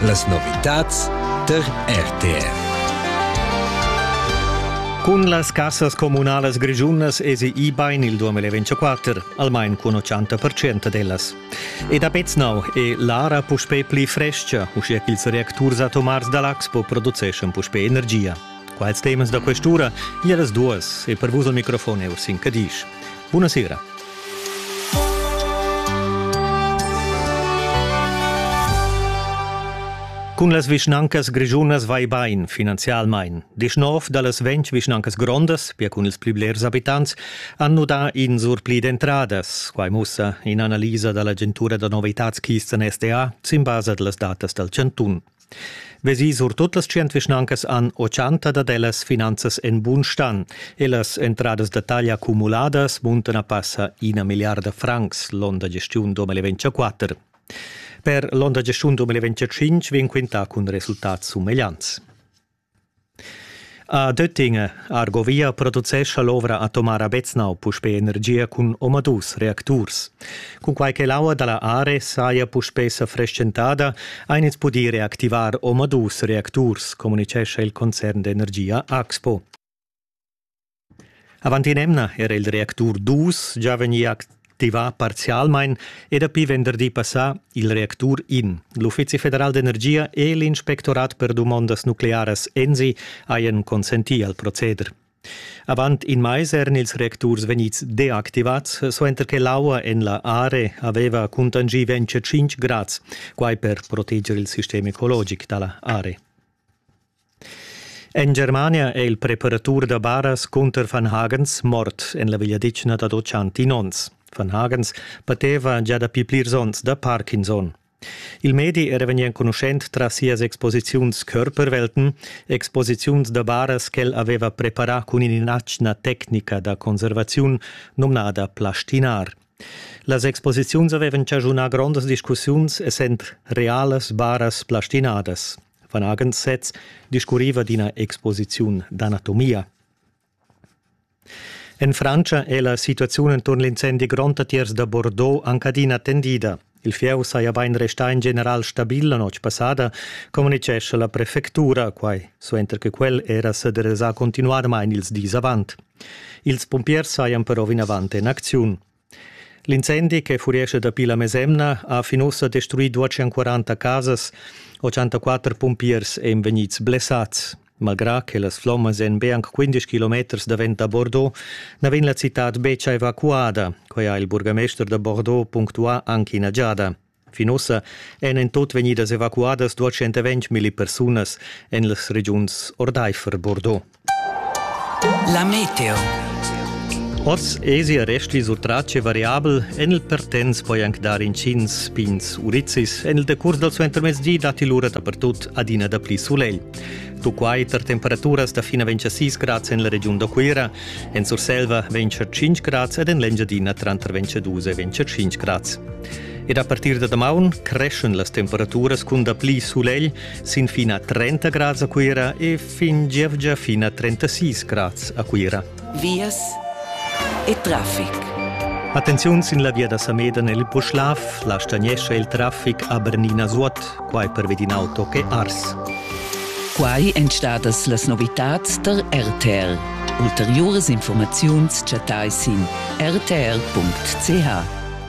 Las novitads tar RTR. Cun las cassas communalas grischunas esi ibain il 2024, almain cun 80% dellas. E da Peznau è l'ara puspè pli frescha, uschia ch'ils reacturs atomars da l'Axpo produceschan puspè energia. Quals temas da quest'ura? Ia las duas e per vus al microfon er sin Cadisch. Buonasera. Cun las vischnancas grischunas vai bain finanzialmain. Disch nov da las ventg vischnancas grondas, pia cun ils pli blers abitants, han nudà in surpli d'entradas. Quai mussa in'analisa da l'agentura da novitads Kisten SDA sin basa da las datas dal chantun. Vesi surtut las tschient vischnancas han ochanta dad ellas finanzas en bun stan e las entradas da taglia cumuladas muntan a passa ina milliarda francs l'onn da gestiun 2024. Per l'onn da gestiun 2025 vegn quintà cun resultats sumegliants. A Döttinge, Argovia, producescha l'ovra atomara Beznau puspè energia cun omadus reacturs. Cunquai che l'aua da la Are saja puspè sa preschentada, ein ins pudì reactivar omadus reacturs, communitgescha il concern d'energia Axpo. Avant in'emna era il reactur dus gia vegnì activà parzialmain e dapi venderdi passà il reactur in. L'Uffizi federal d'energia e l'Inspectorat per dumondas nuclearas ENSI hajan consentì al proceder. Avant in mais eran ils reacturs vegnids deactivads, suenter che l'aua en la area aveva cuntanschì 25 grads, quai per proteger il sistem ecologic da la area. En Germania è il preparatur da baras cunter Van Hagens mort en la vegliadetgna dad otschantin onns. Van Hagens pateva gia dapi plirs onns da Parkinson. Il medi era vegnì enconuschent tras sias exposiziuns Körperwelten, exposiziuns da baras ch'el aveva preparà cun in'atgna tecnica da conservaziun nomnada plastinar. Las exposiziuns avevan chaschunà grondas discussiuns essend realas baras plastinadas. Van agens sez discurriva d'ina exposiziun d'anatomia. En Francia è la situaziun enturn l'incendi gronda tiers da Bordeaux anc adina tendida. Il fieu saja bain restà in general stabil la notg passada, communitgescha la prefectura, quai suenter che quel era s'adressà continuadamain ils dis avant. Ils pumpiers sajan però vinavant en acziun. L'incendi che furescha dapi la mesemna ha fin ussa destruì 240 casas, 84 pumpiers èn vegnids blessads. Malgrà che las flommas èn be anc 15 kilometers davent da Bordeaux, na vegn la citad betg evacuada. Quai ha il burgamester da Bordeaux punctuà anche ina giada. Fin ussa èn en tut vegnidas evacuadas 220 milli persunas en las regiuns ordaifer Bordeaux. La meteo. Oz esi arresti sur trace variabel en il Pertens poi anc dar intgins pins urizis. En il decurs dal suentermezdi datti lura dapertut adina dapli sulegl. Tuquai tar temperaturas da fina ventg a 6 grads en la regiun da Cuira, en Surselva ventg a 5 grads ed en l'Engiadina tranter ventg a 2 e ventg a 5 grads. Ed a partir da damaun creschan las temperaturas cun dapli sulegl sin fin a 30 grads a Cuira e fin gievgia fin a 36 grads a Cuira. Vias e traffic. Attenziun sin la via da Sameda nel Puschlav, la stagnescha il traffic a Bernina Zuot, quai per ved in auto che Ars. Quai èn stadas las novitads tar RTL. Ulteriuras informaziuns chattai sin rtl.ch.